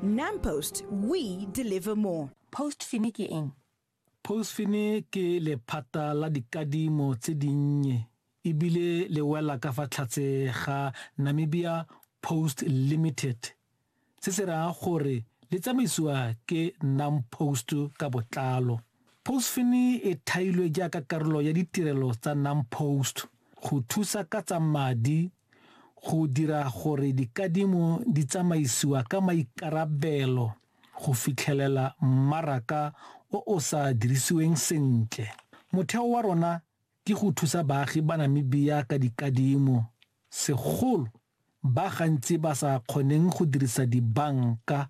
NamPost, we deliver more. Postfine ke eng? Postfine ke lephata la dikadimo tse dinnye ebile le wela ka fa tlhatse ga Namibia Post Limited se se raya gore le tsamaisiwa ke NamPost ka botlalo. Postfine e thailwe jaaka karolo ya ditirelo tsa NamPost go thusa ka tsa madi go dira gore dikadimo di tsamaisiwa ka maikarabelo go fitlhelela mmaraka o o sa dirisiweng sentle. Motheo wa rona ke go thusa baagi ba Namibia ka dikadimo, segolo ba gantsi ba sa kgoneng go dirisa dibanka